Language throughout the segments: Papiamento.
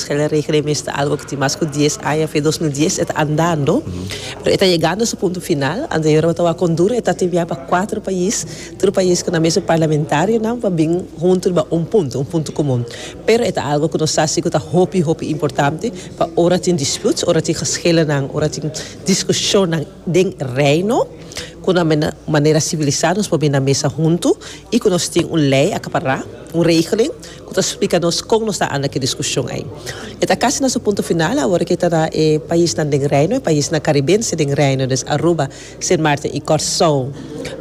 Chele Rekening mes ta algo ku tin mas ku dies aña fe. Dos mil dies e ta andando, pero e ta yegando su punto final. Ante Europa tabata konduren, e ta timbiá pa kuater pais, tur pais ku nan mesun parlamentarionan pa bin huntu riba un punto, un punto komun. Pero e ta algo ku nos sa si ku ta hopi, hopi importante pa ora tin disputes, ora tin geshelenan, ora tin diskushonnan den Reino, ku nan men manera sibilisá nos por bini na mesa huntu i ku nos tin un lei akapará, un regeling, Cu ta splica nos con nos ta anda cu e discusion ey. E ta casi na su punto final awor cu e ta na e paisnan den Reino, e paisnan caribense den Reino, dus Aruba, Sint Maarten y Corsow,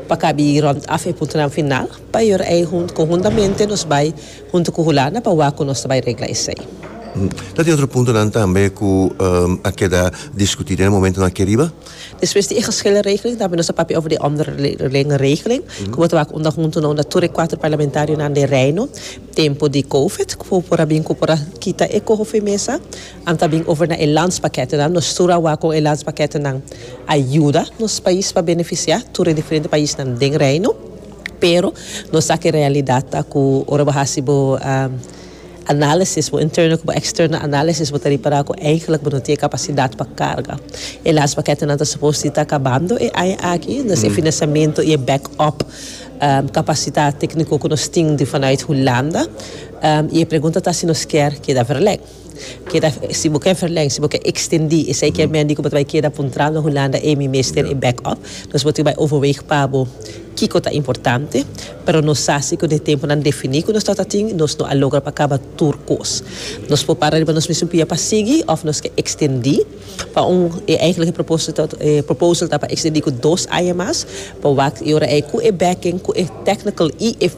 pa cabi rond af e puntonan final. Pa e ora ey hun, conhuntamente nos bay hunto cu Hulanda pa wak cu nos ta bay regla esey. Ta tin otro puntonan tambe cu a keda discuti den e momentonan aki riba. Despues di e geschillenregeling tambe nos a papia over di omderlingenregeling ku bo ta wak unda huntu na unda tur e kuater parlamentarionan den Reino. Tempu di Covid ku por a bin ku por a kita e koho firmesa anto a bin over na e landspakketennan. Nos tur a wak kon e landspakketennan a yuda nos pais pa benefisiá tur e diferente paisnan den Reino. Pero nos sa ku e realidat ta ku ora bo hasi bo. análisis, bo interno ku bo eksterno análisis, bo ta repará ku eigenlik bo no tin e kapasidat pa karga. E las paketenan ta supos di ta kabando e aña aki, dus e finansiamentu i e back-up kapasitat tékniko ku nos tin di vanuit Hulanda, i e pregunta ta si nos kier keda verlei. Keda si bo ke verleng, si bo ke extendi esei ke men di ku bo ta bai keda pa un trao na Hulanda emi mester e back up. Nos bo tin ku bai overweeg pa bo kiko ta importante. Pero nos sa si ku den e tempunan defini ku nos ta ta tin nos no a logra pa kaba tur kos. Nos por para riba nos mes un pia pa sigui of nos ke extendi pa un e eigenlijke proposito e proposal ta pa extendi ku dos aña mas pa wak i ora ei ku e backing ku e technical i e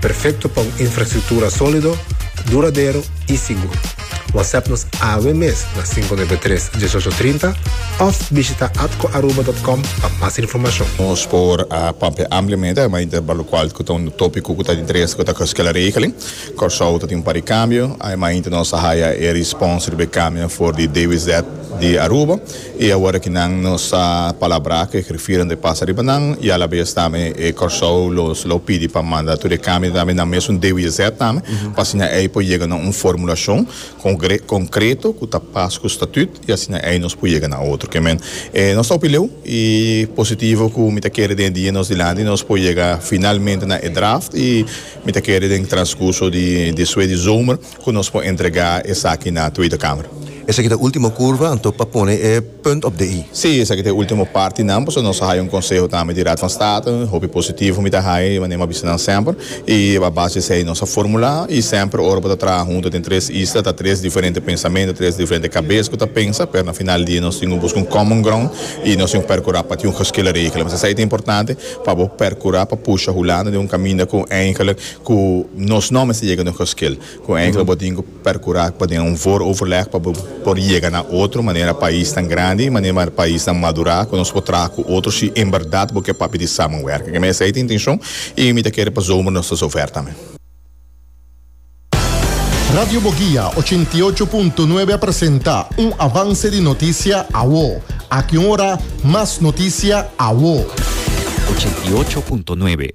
Perfecto pa un infrastructura solido, duradero y sigur. WhatsApp nos awe mes na cinco nuebe tres, diesocho trinta of bishita atcoaruba.com pa mas informacion. Nos por a papia ampliamente a mei di balocual cu ta un topico cu ta di interesa cu ta cos kila regeling. Corsou ta tin un par di cambio. Aymeinti nos a haya e respons riba e cambio na for di DWZ di Aruba. I awor aki nan nos a palabrá ku e grifiernan ta pasa riba nan i alabes tambe e Kòrsou los lo pidi pa manda tur e kambio tambe nan mesun DWZ tambe pa asina ei por yega na un formulashon kongre konkreto ku ta pas ku statùt i asina ei nos por yega na otro ke men e nos ta hopi leu i positivo ku mi ta kere den e dia nos dilanti nos por yega finalmente na e draft i mi ta kere den e transkurso di despues di zomer. Cu nos por entrega esaki na Tweede Kamer? Esaki ta ultimo curva, anto pa pone e punt op de i. Sí, esaki ta e ultimo parti nan, pasobra nos a haya un conseho tambe di Raad van State, hopi positivo mi ta haya, di manera mi a bisa nan semper, y a base di esey nos a formula, y semper ora bo ta traha hunto den tres isla, ta tres diferente pensamento, tres diferente cabes cu ta pensa, pero na final di dia nos tin cu busca un common ground, y nos tin cu percura pa tin un geskele regelen. Mester esey ta importante, pa bo percura pa pusha Hulanda den un caminda cu eindelijk, Ku nos nòmber ta yega no kòskil. Ku enkele bo tin ku perkurá pa den un vooroverleg pa bo por yega na otro manera paisnan grandi i manera paisnan madurá ku nos por traha ku otro shi en bèrdat bo ke papia di samenwerking. Ke mester ei ta intenshon i mi ta kere pa zomer nos ta zover tambe. Radio Bogia ochenta i ocho punto nuebe a presenta un avanse di notisia awo. Aki un ora mas notisia awo. Ochenta i ocho punto nuebe.